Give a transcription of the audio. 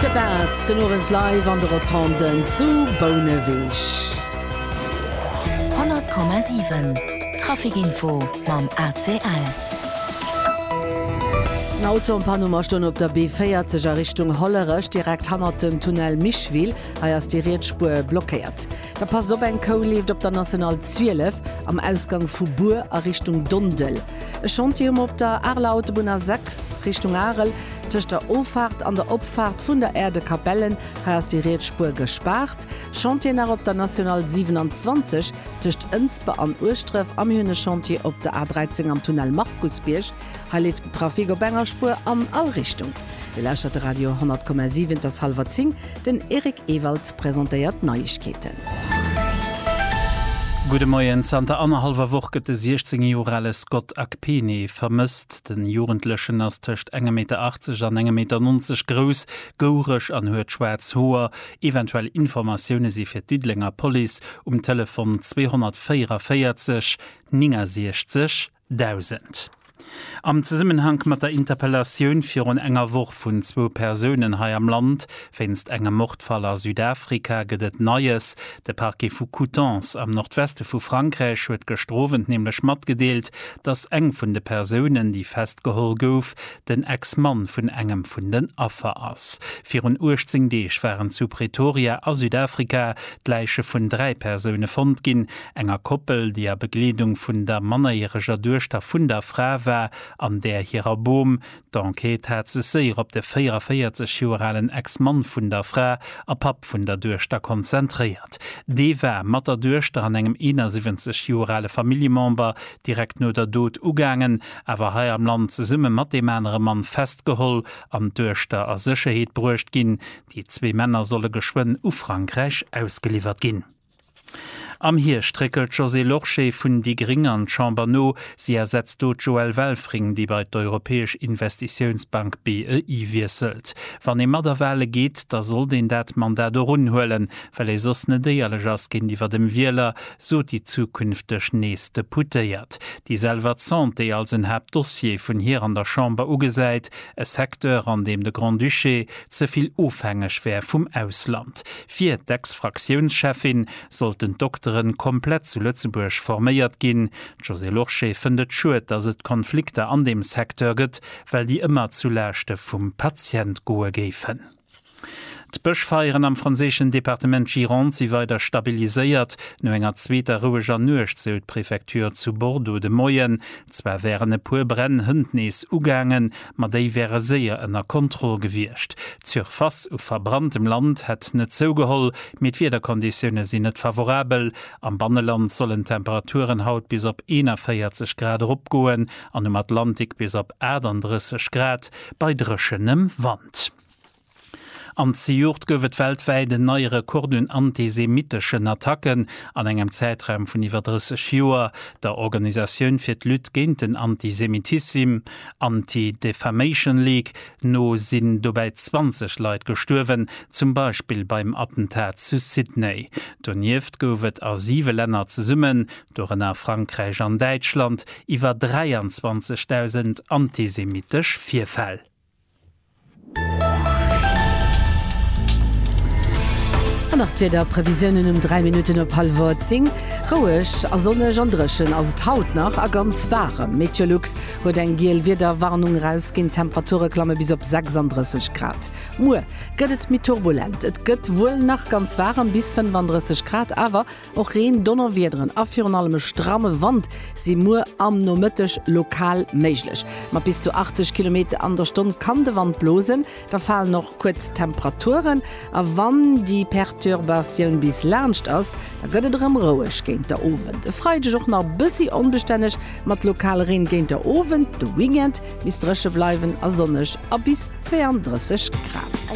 De Bartz den Owend live an de Rotonden zu Bouneweg. 100,7 Trafikinfo mam ACL. En Auto am Panuma stoung op der B40 a Richtung Hollerech direkt hannert dem Tunnel Micheville. Hei ass déi riets Spuer blockéiert. Da passt op, eng Kou leeft op der National 12 am Ausgang vu Bur a Richtung Dondel. E Chantier um op der Areler Autobunn A 6, Richtung Arel, tëscht der Offaart an der Opfaart vun der Aire de Capellen. Hei ass déi riets Spuer gespaart. Chantier nach op der National 27, tëscht Ënsber an Ueschdref. A mir hunn e Chantier op der A 13 am Tunnel Markusbierg. Hei leeft den Trafic op enger Spuer an all Richtung. Dir lauschtert de Radio 10,7, et ass hallwer 10, den Eric Ewald presentéiert d'Neiegkeeten. Gudde Moien, Zanter annerhallwer Woch gëtt de 16 Joer ale Scott Akpene vermësst. Den Jugendlechen ass tëscht engem Meter 80 an engem Meter 90 grouss, goureg an huet schwaarz Hoer. Eventuell Informatioune si fir d'Diddelenger Police um Telefon 244 69 Dausend. Am Zesummenhank mat der Interpellatioun virun enger Woch vun zwou Persounen hei am Land wéinst engem Mordfall a Südafrika gëtt et Neies. De Parquet vu Coutances am Nordweste vu Frankräich huet gëschter Owend nämlech matgedeelt, datt eng vun de Persounen, déi festgeholl gouf, den Ex-Mann vun engem vun den Affer ass. Virun 18 Deeg waren zu Pretoria a Südafrika d'Läiche vun dräi Persoune fonnt ginn, enger Koppel, déi a Begleedung vun der mannerjäreger Duechter vun der Fra war, an där hirer Bom. D'Enquête hat sech séier op de 44 Joer alen Ex-Mann vun der Fra a Papp vun der Duechter konzentréiert. Dee war mat der Duechter an engem 71 Joer ale Familljemember direkt no der Dot ugaangen, awer hei am Land zesumme mat deem anere Mann festgeholl an duechter a Sécherheet bruecht ginn. Déi zwee Männer solle geschwënn u Frankräich ausgeliwwert ginn. Am Hierscht réckelt d'Josée Lorsché vun déi Gring an d'Chamber no. Si ersetzt do d'Joëlle Welfring, déi bei d'Europäesch Investitiounsbank BEI wiesselt. Wann ee mat a Wahle geet, da sollt een dat Mandat och unhuelen, well ee soss net éierlech ass géintiwwer dem Wieler, sot déi zukünfteg nees Deputéiert, déi selwer d'Santé als en Haaptdossier vun hir an der Chamber ugesäit, e Secteur, an deem de Grand-Duché ze vill ofhängeg wär vum Ausland. Fir d'Ex-Fraktiounscheffin sollten d'Doktere komplett zu Lëtzebuerg forméiert ginn. D'Josée Lorsché fënnt et schued, datt et Konflikter an deem Secteur gëtt, well déi ëmmer zu Laaschte vum Patient goe géifen. D'Bëschfeieren am franséischen Departement Gironde si weider stabiliséiert. No enger zweeter roueger Nuecht, sou d'Prefecture zu Bordeaux de Moien. Zwar wären e puer Bränn hënt nees ugaangen, ma déi wäre séier ënner Kontroll gewiescht. D'Surface u verbranntem Land hätt net zougeholl, mee d'Wiederkonditioune sinn net favorabel. Am Banneland sollen d'Temperaturen haut bis op 41 Grad eropgoen an um Atlantik bis op 38 Grad. bei dréchenem Wand. An zejoert gouf et weltwäit en neie Rekord un antisemitteschen Attacken an engem Zäitraum vun iwwer 30 Joer. Der Organisatioun fir d'Lutte géint den Antisemitissim, Anti-Defamation League, no sinn dobäi 20 Leit gestuerwen, zum Beispill beim Attentat zu Sydney. Donieft gouf et a siwe Länner zesumme dorënner Frankräich an Däitschland, iwwer 23.000 antisemittesch Virfäll. An nach d'Wiederprevisiounen um 3 Minutten op hallwer 10, Roueg a sonneg an dréchen ass et haut nach a ganz waarem. Meteolux huet eng giel Wiederwarnung erausginn, d'Temperature klamme bis op 36 Grad. Muer gëtt et méi turbulent, et gëtt wuel nach ganz waarem, bis 35 Grad, awer Och Reen, Donnerwiederen a virun allem e stramme Wand si muer am Nomëtteg lokal méiglech. Mat bis zu 80 Kilometer an der Stonn kann de Wand blosen, da falen och kuerz Temperaturen. A wann déi Perturbatioun bis laanscht ass, da gëtt et erëm roueg géint der Owend. E Freideg och nach bëssi onbestänneg mat lokal Reen géint der Owend. De Weekend misst dréche bleiwen a sonneg a bis 32 Grad.